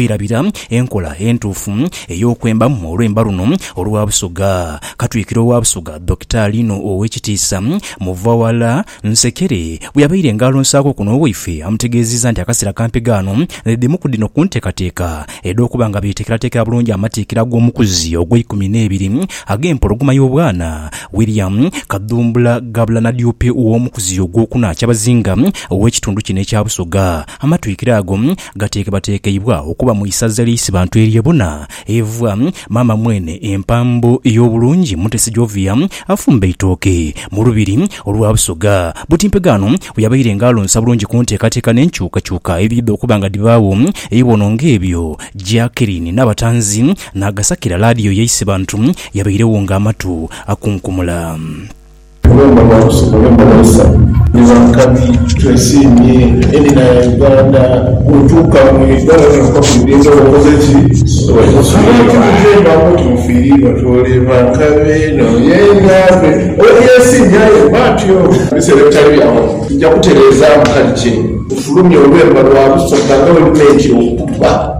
Twirabira enkola entuufu ey'okwemba mu olwemba luno olwa Busoga. Katwikiro wa Busoga, Dokita Lino Owekitiisa Muvawala Nsekere bweyabaire nga alonsaaku kuno owaife amutegeezizza nti akaseera kampi gaano ni dhimu ku dhino ku nteekateeka edh'okuba nga beeteekerateekera bulungi amatikkira g'omukuzi ogweikumi n'ebiri ag'empologoma y'obwana William Kadhumbula Gabulana Diope ow'omukuzi ogwokuna Kyabazinga ow'ekitundu kino ekya Busoga. Amatwikiro ago Gateekebateekeibwa okuba mu isaza lya Isibantu erye Buna, Evwa. Maama mwene empambo ey'obulungi Mutesi Jovia afumba eitooke mu lubiri olwa Busoga. Butimpega ghano we yabaire nga alonsa bulungi ku nteekateeka n'enkyukakyuka ebiidha okuba nga dhibaagho eiwono ng'ebyo. Jackeline Nabatanzi n'agasakira laadiyo ya Isibantu yabairegho ng'amatu akunkumula. Tugomba batuuse mu nyumba dhaisa nga nkabi twesiimye enina ya Uganda bwotuuka mu Uganda wena ofa ku idembe oba okoze ki abantu bwebeembaku nti mufiiriirwa twoleeba nkabi eno yengambe oba yesiimye aye mba ntyo. Mu biseera ebitali bya ghano tuja kutereezaamu kali kye ofulumye olwemba lwa Lusoga nga bwe lumenti okubba.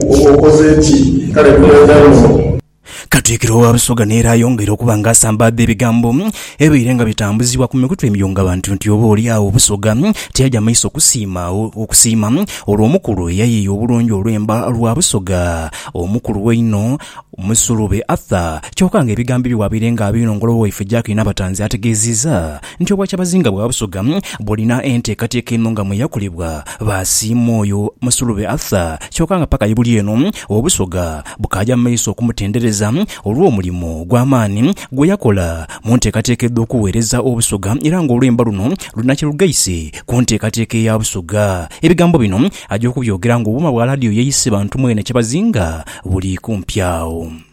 Oba okoze ki? Kale nkoonza inho. Katikkiro wa Busoga n'era ayongeire okuba nga asambaadha ebigambo ebibaire nga bitambuzibwa ku mikutu emiyungabantu nti oba oli agho Busoga tiyaja maiso kusiima okusiima olwo omukulu eyayiiya obulungi olwemba lwa Busoga omukulu einho Musulube Arthur kyoka nga ebigambo ebyo bwabaire nga abinongola owaife Jack Nabatanzi ategeeziiza nti Obwakyabazinga bwa Busoga bulina enteekateeka eno nga mwe yakolebwa baasiima oyo Musulube Arthur kyoka nga paka yebuli eno Obusoga bukaaja mu maiso okumutendereza olw'omulimo ogw'amaani gwe yakola mu nteekateeka edh'okuweereza Obusoga era nga olwemba luno lulina kye lugaise ku nteekateeka eya Busoga. Ebigambo bino aja okubyogera ng'obuuma bwa laadiyo yeeyise bantu mwene Kyabazinga buli kumpi agho.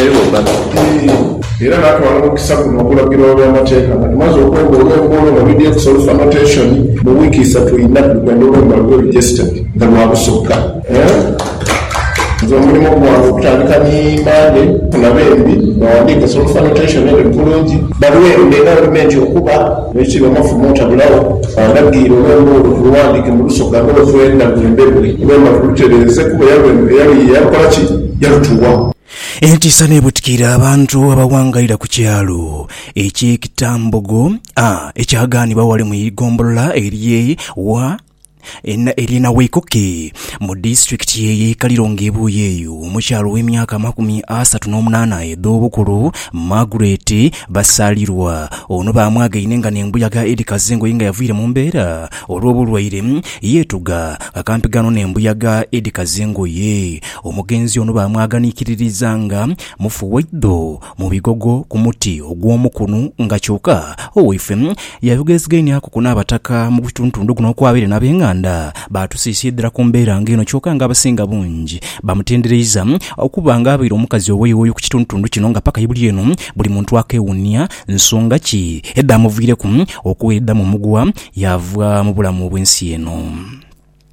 eyo bati. Era natwala omukisa guno okulagila olw'amateeka nga tumaze okwemba olw'emboolo nga luli ex olufa notation mu wiiki isatu inha tuli kwenda olwembo nga lube registered nga lwa busokka. Nze omulimo gwange okutandika ni Monday funa bembi bawandiike ex olufa notation eno bulungi. Balwembe era ndume nti okuba ekiri omafumo otabulawo andagiire olwembo olwo tuluwandiike mu lusokka nga bwetwenda lwembebwe olwemba tulutereeze kuba eyalwemba eyalukola ki? yalutugha. Entiisa n'ebutikiira abantu abawangalira ku kyalo eky'e Kitambogo A ekyagaanibwa ghale mu igombolola ery'e wa ery'e Nawekoke mu disitulikiti eye Ikaliro ng'ebuuyi eyo omukyala ow'emyaka amakumi asatu n'omunaana edh'obukulu Margaret Basalirwa ono baamwagaine nga n'embuyaga edhikaza engoye nga yavaire mu mbeera olw'obulwaire yeetuga kakampigaano n'embuyaga edhikaza engoye Omugenzi ono baamwaganiikiririza nga mufu waidho mu bigogo ku muti ogw'omukunu nga kyoka owaife yayogeezigainiaku ku n'Abataka mu gutuntundu guno okw'abaire n'abenganda baatusiisiidhira ku mbeera nga eno kyoka nga abasinga bungi bamutendereiza okuba nga abaire omukazi owoiwoyi ku kituntundu kino nga paka ibuli eno buli muntu akeewuunia nsonga ki edhaamuviireku okweda mu mugwa yaava mu bulamu bw'ensi eno.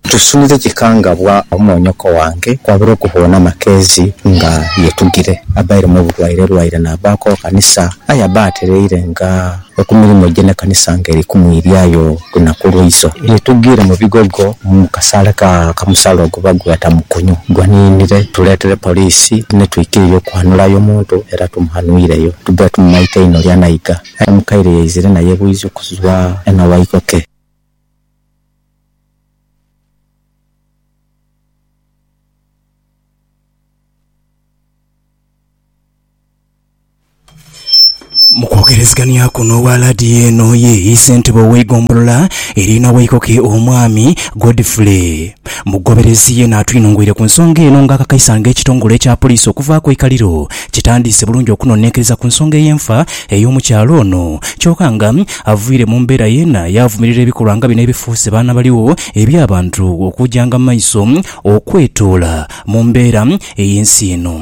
Tusunire kikangabwa omwonyoko wange kwabire okuboona amakeezi nga yetugire. Abaire mu bulwaire lwaire naabaaku okanisa, aye aba atereire nga oku mirimo gye n'ekanisa nga eri kumwiryayo lunaku lwaizo. Yetugire mu bigogo mu kasaale ka kamusala oguba gwata mukunyu gwa niinire tuleetere poliisi ni twikirire okwanhulayo omuntu era tumuhanhuireyo. Tubaire tumumaite inho lya naiga aye mukaire yaizire naye bwiza okuzwa e Nawaikoke. Mu kwogerezeghanyaku n'owa laadiyo eno ye Isentebe ow'eigombolola eri Nawaikoke Omwami Godfrey Mugoberezi yena atwinhongweire ku nsonga eno nga akakaisa nga ekitongole ekya poliisi okuvaaku eikaliro kitandiise bulungi okunonenkereza ku nsonga ey'enfa ey'omukyala ono kyoka nga Avaire mu mbeera yeena yaavumirira ebikolwa nga bino ebifuuse baana baligho eby'abantu okuujanga mu maiso okwetoola mu mbeera ey'ensi eno.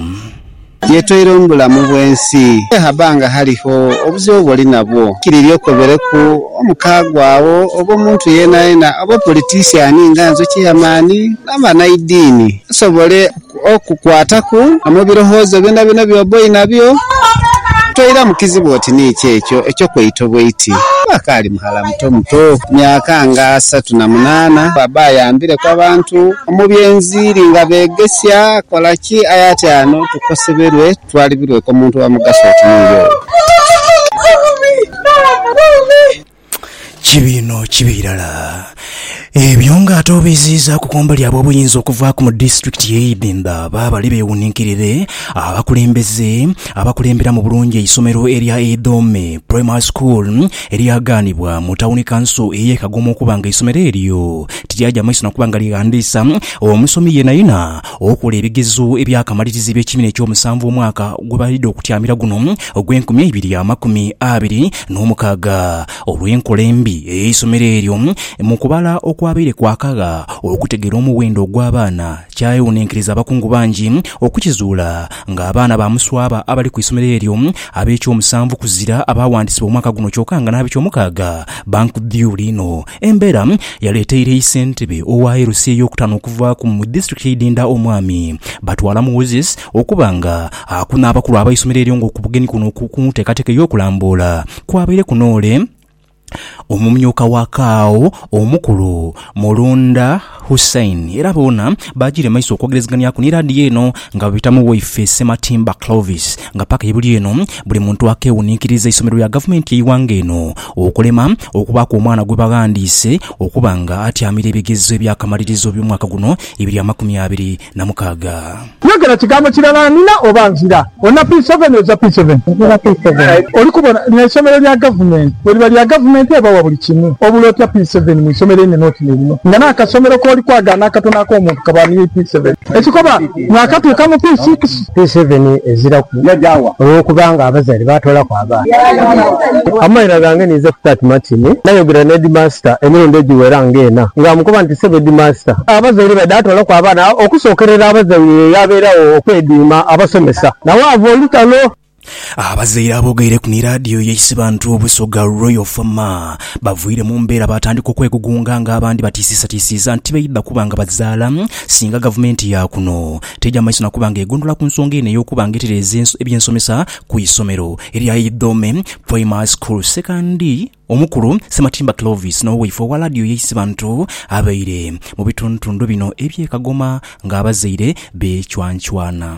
Yetoile omu bulamu bw'ensi. Aye haba nga haligho obuzibu bw'oli nabwo, nkiririre okobereku omukaago agho, oba omuntu yeenayeena, oba opolitisiani nga nze, cheyamaani, n'abaana idiini basobole Okukwataku mu birowoozo byonabyona by'oba oinabyo, toiramu kizibu oti ni ki ekyo eky'okweita obweiti. Akaali mughala muto muto, myaka nga asatu na munaana, aba ayambireku abantu mu by'enziiri nga beegesia kola ki. Aye ati ano tukoseberwe, twalibirweku omuntu owa mugaso oti niiwe oyo. Kibi inho kibi irala. Ebyo nga ate obiiziizaaku kumbali ab'obuyinza okuvaaku mu disitulikiti ye Idhimba baabali beewuninkirire abakulembeze abakulemberamu bulungi eisomero erya Idhome Primary School eryagaanibwa mu Tawuni Kanso ey'e Kagoma okuba nga eisomero eryo tiryaja maiso nakuba nga lighandiisa omusomi yenayena okola ebigezo ebyakamaliriza eby'ekibiina eky'omusanvu omwaka gwebalidha okutyamira guno ogw'enkumi eibiri amakumi abiri n'omukaaga olw'enkola embi ey'eisomero eryo mu kubala okwabaire kwakagha okutegeera omuwendo ogw'abaana kyayewuninkiriza abakungu bangi okukizuula nga abaana ba muswaba abali ku isomero eryo ab'ekyomusanvu kuzira abaawandisibwa omwaka guno kyoka nga n'abekyomukaaga bankdhiyuula inho embeera yaleteire yi ssentebe owa LC ey'okutaano okuvaaku mu disitulikiti y'e Idinda Omwami Batwala Moses Okuba nga aku n'abakulu abaisomero eryo nga okubugeni kuno ku nteekateeka ey'okulamboola kwabaireku n'ole omumyuka wa Kaao omukulu Mulunda Hussein era boona baagiire maiso okwogerezeganiaku ni laadiyo eno nga babita mu waife Ssematimba Clovis nga paka ye buli eno buli muntu akeewuninkiriza eisomero lya gavumenti yeighanga eno okulema okubaaku omwana gwebaghandiise okuba nga atyamira ebigezo ebyakamalirizo eby'omwaka guno ebiri amakumi abiri na mukaaga. Yogera kigambo kirala nina oba nzira. Olina P seven oza P seven? Nzira P seven. Oli kubona lino isomero lya gavumenti? Bweriba lya gavumenti oba wa buli kimu. Obula otya P seven mu isomero einene oti nilino? Nga n'akasomero k'oli kwagaana akatono ak'omuntu kaba niyo P seven. Ekikoba mwakatuuka mu P six. P7 eziraku olwokuba nga abazali batolaku abaana. Amaira gange ninze kutati Martin. Nayogera ne Headmaster emirundi egiwera nga ena nga amukoba nti Ssebo Headmaster, abazai ni baidha tolaku abaana okusokerera abazai ye yabeeragho okwediima abasomesa nawaava olutalo. Abazaire aboogaireku ni laadiyo ya Isibantu Obusoga Royal Fama baviire mu mbeera baatandika okwegugunga nga abandi batiisiisatiisiiza nti baidha kuba nga bazaala singa gavumenti ya kuno teja maiso na kuba nga egondhola ku nsonga eno ey'okuba nga etereeza eby'ensomesa ku isomero erya Idhome Primary School Second. Omukulu Ssematimba Clovis n'owaife owa laadiyo ya Isibantu abaire mu bitundutundu bino eby'e Kagoma ng'abazaire beecwancwana.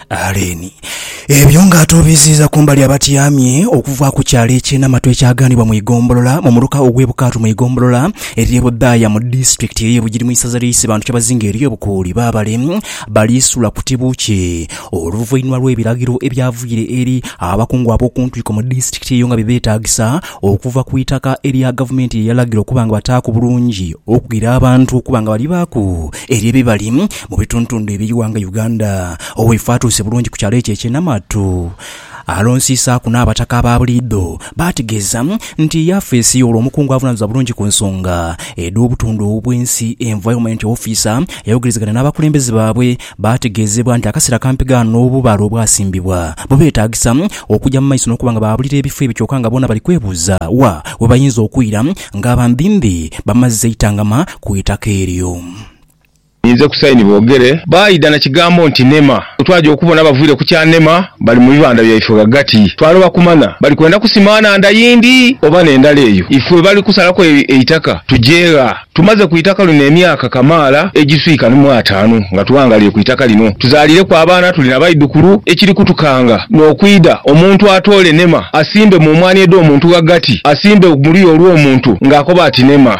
Aleeni. Ebyo nga ate obiziiza kumbali abatyamye okuva ku kyalo eky'e Namatu ekyaganibwa mu igombolola mu muluka ogw'e Bukaatu mu igombolola ery'e Budhaaya mu disitulikiti ey'e Bugiri mu isaza ly'e Isibantu kyebazinga ery'e Bukuuli baabale bali sula ku tibu kye oluvainhuma lw'ebiragiro ebyavuyire eri abakungu ab'okuntwiko mu disitulikiti eyo nga bibetagisa okuva ku itaka erya gavumenti lyeyalagira okuba nga bataaku bulungi okugira abantu okuba nga balibaaku Eryo ebibali mu bituntundu eby'eighanga Uganda. Oweifo atuuse bulungi ku kyalo ekyo eky'e Namatu. Alonsiisaaku n'abataka aba buliidho. Baategeeza nti yafeesi y'olwo omukungu avunanizibwa bulungi ku nsonga edh'obutonde obw'ensi, Environment Officer, yayogerezegana n'abakulembeze baabwe. Baategeezebwa nti akaseera kampi ghano obubaale obwasimbibwa bubeetaagisa okugya mu maiso n'okuba nga baabulira ebifo ebyo kyoka nga boona bali kwebuuza wa webayinza okwira nga bambimbi bamazze eitangama ku itaka eryo. Ninze ku sayini boogere. Baidha na kigambo nti Nema. Bwe twaja okubona bavaire ku kya Nema bali mu bibanda byaife ghagati, twaloba kumanya bali kwenda kusima nhandha yindi oba n'endala eyo ife bali kusalaku eitaka tuje gha. Tumaze ku itaka lino emyaka kamaala egiswika mu ataanu nga tughanghaliire ku itaka lino. Tuzaaliireku abaana, tuli na baidhukulu. Ekiri kutukanga n'okwidha omuntu atoole Nema asimbe mu mwaani edh'omuntu ghagati, asimbe mu luya olw'omuntu ng'akoba ati Nema.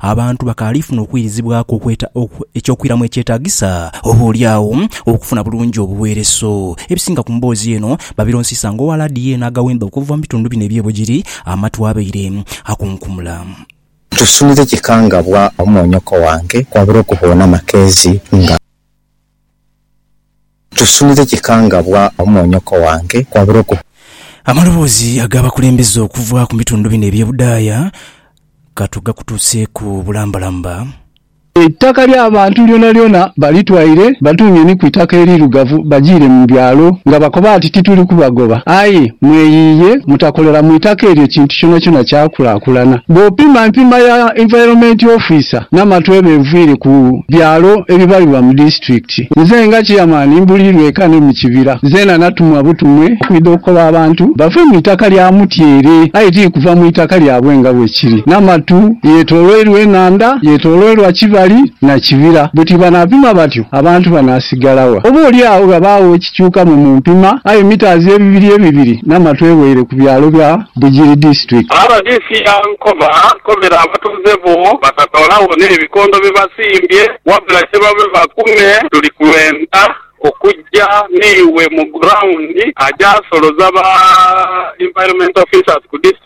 Abantu bakaalifuna okuirizibwaku okweta eky'okwiramu ekyetaagisa, oboolyawo okufuna bulungi obuweereso. Ebisinga ku mboozi eno babironsiisa nga owa laadiyo eno agawemba okuva mu bitundu bino eby'e Bugiri amatu abaire akunkumula. Ntusunire kikangabwa omwonyoko wange kwabula okuboona amakeezi nga. Tusunire kikangabwa omwonyoko wange kwabula oku. Amaloboozi ag'abakulembeze okuva ku bitundu bino eby'e Budaaya ka tugakutuuseeku bulambalamba. Eitaka ly'abantu lyonalyona balitwaire, batuunye ni ku itaka eriirugavu, bajiire mu byalo nga bakoba ati, Tituli kubagoba. Aye mweyiiye mutakolera mu itaka eryo kintu kyonakyona kyakulaakulana. Bw'opima empima ya Environment Officer n'amatwebe enviire ku byalo ebibalibwa mu disiturikiti. Nze nga Chairman mbuliirwa eka ne mu kibira. Nzena natumwa butumwe okwidha okukoba abantu bave mu itaka lya Mutyere aye ti kuva mu itaka lyabwe nga bwe kiri. Namatu yetoloirwa enhandha, yetoloirwa kibali na kibira. Bwe tibanapima batyo, abantu banasigala wa? Oba oli agho ghabagho Kikyuka mwe mumpima, aye mitaazi ebibiri ebibiri n'amatwe waire ku byalo bya Bugiri District. Rdc Ankoma kobera abatuuze bo batatoolawo n'ebikondo bye basimbye wabula kye babe bakume tuli kwenda okujja n'iwe mu ground, agyasoloza ba Environment Officers ku District.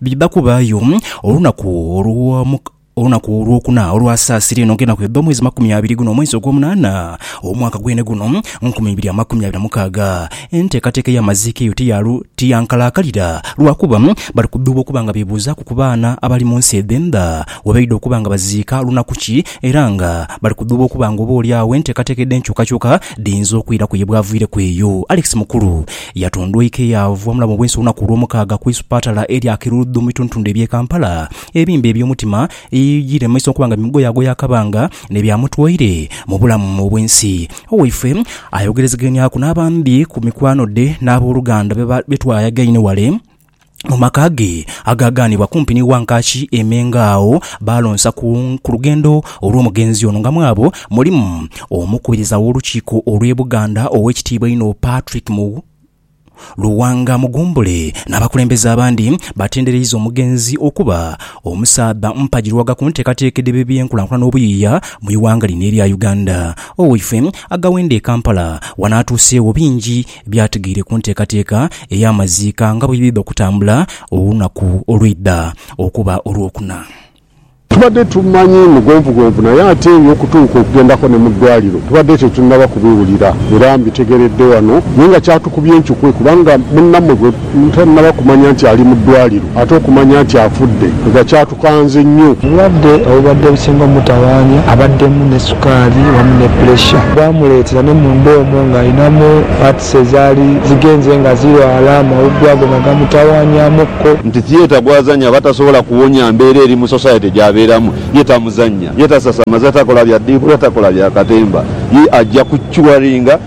Bidha kubaayo olunaku olw'omu olunaku olwokuna olwasaasira eno nga enaku edho mwezi makumi abiri guno omwezi ogwomunaana omwaka gwene guno nkumi ibiri amakumi abiri na mukaaga enteekateeka ey'amaziika eyo tiyaalu tiyankalaakalira lwakuba bali kudhuuba okuba nga bebuuzaaku ku baana abali mu nsi edhendha webaidha okuba nga baziika lunaku ki era nga bali kudhuuba okuba nga oba oli agho enteekateeka edh'enkyukakyuka Dhiyinza okwiraku ye bw'aviireku eyo, Alex Mukulu yatondweike yaava omulamu bw'ensi olunaku olw'omukaaga ku isupatala erya Kirudhu mu bitundutundhu eby'e Kampala. Ebimbe eby'omutima eby'okulemesa okuba nga bimugoyaagoya akabanga ne byamutwaire mu bulamu obw'ensi. Owaife ayogerezeganyaku n'abandhi ku mikwano dhe n'aboluganda be twayagaine wale. mu maka ge agaagaanibwa kumpi ni Wankaaki e Mengo agho baalonsa ku ku lugendo olw'omugenzi ono nga mwabo mulimu Omukubiriza w'Olukiiko olw'e Buganda Oweekitiibwa einho Patrick Mu Luwanga Mugumbule n'abakulembeze abandi baatendereiza omugenzi okuba omusaadha mpagirwaga ku nteekateeka edh'ebyenkulankulana obuyiiya mu ighanga lino erya Uganda. Owaife agawenda e Kampala wano atuuseegho bingi Byatigaire ku nteekateeka ey'amaziika nga bwe biidha okutambula olunaku olwidha okuba Olwokuna. Tubadde tumanyi mugonvugonvu naye ate eby'okutuuka okugendako ne mu ddwaaliro tubadde tetunnaba kubiwulira era mbitegeredde wano naye nga kyatukubya encukwe kubanga munnammwe gwe Nte naba kumanya nti ali mu ddwaliro ate okumanya nti afudde nga kyatukanze nnyo. Obulwadde obubadde businga omutawaanya abaddemu ne sukaali wamu ne puleesha bwamuleetera ne munda omwo ng'alinamu parts ezaali zigenze nga zirwala amawuggwe ago nga gamutawaanyamukko. Nti theatre gw'azannya aba tasobola kuwonya mbeera eri mu society gy'abeeramu. Ye tamuzannya, ye tasasamaza, takola bya ddiibula, takola bya katemba. Ye ajja ku curinga.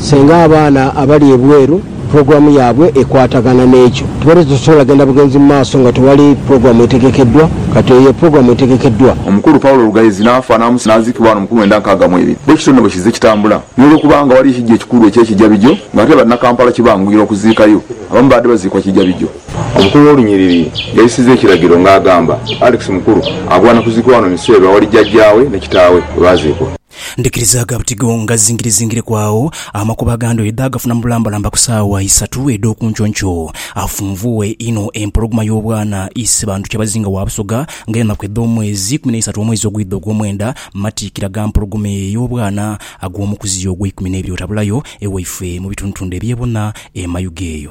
Singa abaana abali ebweru pulogulaamu yaabwe ekwatagana n'ekyo, tubadde tetusobola genda bugenzi mu maaso nga tewali pulogulaamu etegekeddwa. Kati eyo ye pulogulaamu etegekeddwa. Omukulu Paulo Lugaizi n'afa n'amusiga n'aziikibwa wano mu kumwenda nkaaga mw'ebiri. Bwe kityo nno bwe kizze kitambula. N'olwokuba nga waliyo ekiggya ekikulu eky'Ekijabijo, ng'ate Bannakampala kibanguyira okuziikayo, abamu baabadde baziikwa Kijabijo. Omukulu w'olunyiriri yayisizza ekiragiro ng'agamba, Alex Mukulu agwana kuziikibwa wano Miseru awali jjajjaawe ne kitaawe we baaziikwa. Ndikirizaaga buti go ngazingirizingireku agho, amakubo aga ndhoyi dhe agafuna mu bulambalamba ku saawa isatu edh'oku nkyonkyoo. Afunvuughe inho empologoma y'obwana, Isebandhu Kyabazinga wa Busoga, nga enaku edh'omwezi ikumi n'eisatu omwezi ogwidha ogw'omwenda, matiikira ga mpologoma eyo ey'obwana ag'omukuziyo ogw'eikumi n'ebiri otabulayo ewaife mu bitundutundu eby'e Buna e Mayuge eyo.